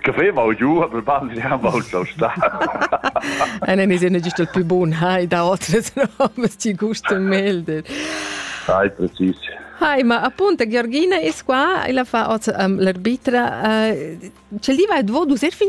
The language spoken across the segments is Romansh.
che veva giu a ban Eine ist eine Gestalt più buona e da otras no, mas ti gusta melder. Hai precis. Hai, ma appunto Georgina è qua e la fa oz um, l'arbitra. Uh, ce li va dvo du ser fin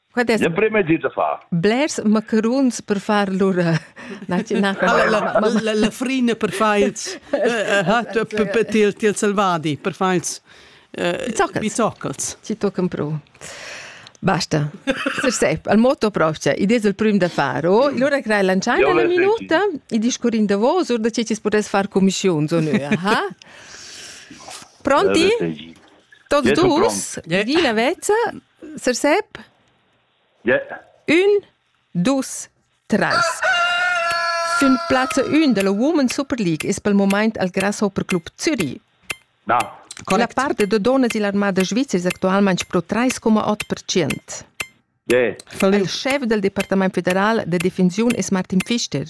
Quad es l'emprim es dit da far. Blers macaruns per far lur na na la, la, la frina per far ils per til til selvadi per far ils bizoccels. bizoccels. Ci tocan pro. Basta. Sep, al moto proprio, i des il prim da fare, oh, allora crai lanciai una minuta, i discurin da vos, or da ce ci potess far commissione, so noi, aha. Pronti? Toți dus, Gina Veță, Sir Sep? Yeah. Un, dus, tres. Fin plazza 1 della Women Super League ist pel moment al Grasshopper Club Zürich. Da. La parte de donas e l'armada Svizzera è attualmente pro 3,8%. Yeah. Il chef del Departement federal de defensione è Martin Pfister.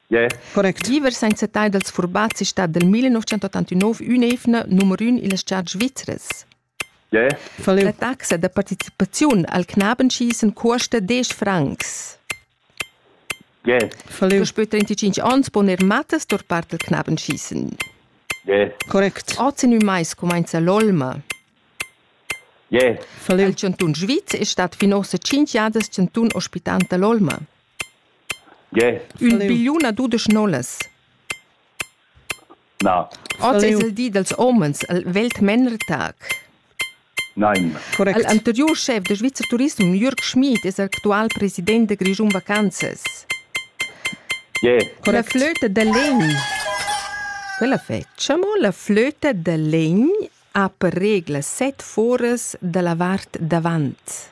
Yeah. Correct. Viver senza tai dels furbazzi stat del 1989 un'evna numero 1 illas chart svizzeres. Fa leu taxa da participaziun al Knabenschi sen cuosta desch francs. Fa leu spö trentitschinch ons pon er mattas tur part al Knabenschi sen. Correct. Oz in ün mais cumainza l'olma. Fa leu. Il Cantun Sviz è stat fin ossa tschinch jadas Cantun ospitanta l'olma. Ün bigliun a dudesch nolas. Na. Oz es il di dals homens, el vegl Männertag. Nein. Correct. El anteriur schef da Svizzer Turism, Jürg Schmid, es actual president da Grischun Vacanzas. Yeah. La flöte de legn. Quella facciamo. La flöte de legn ha per regla set foras da la vart davant.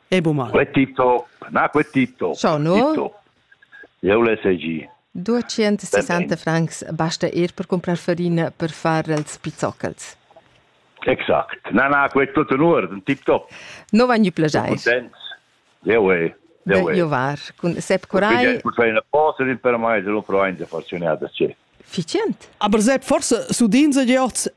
Ebo mal. Quel Tito, na, quel Tito. Ciao, no? Tito. Eu le segi. 260 francs basta ir per comprar farina per far els pizzoccels. Exact. Na, na, quel tutto in ordine, tip top. No van ju plagiais. Eu e. Io var. Cun Sepp Corai. Cun fai una posa per mai, se lo provain da farci un'altra ce. Ficient. Aber Sepp, forse su din se giots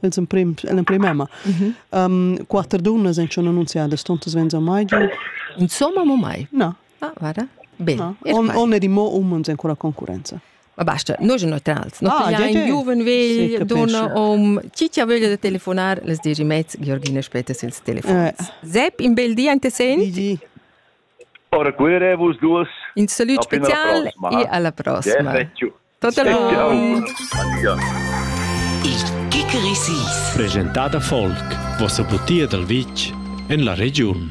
els emprim, l'emprim emma. Mm -hmm. um, quatter dunnas en schon annunziadas, tontas venza mai giu? Insomma, mo mai. No. Ah, vada. Bene. No. On, on è di mo umens ancora concurenza. Ma basta, noi sono neutrals. No, ah, ja, ein giuven vegl, donna om, citia veglia da telefonar, les dici mezz, Georgina später senza telefon. Eh. Sepp, in bel dia, inte senti? Di, Ora cuirevus dus. In salut special e alla prossima. Il Kikerisis. Presentada folk, vossa butia dal vitg en la regiun.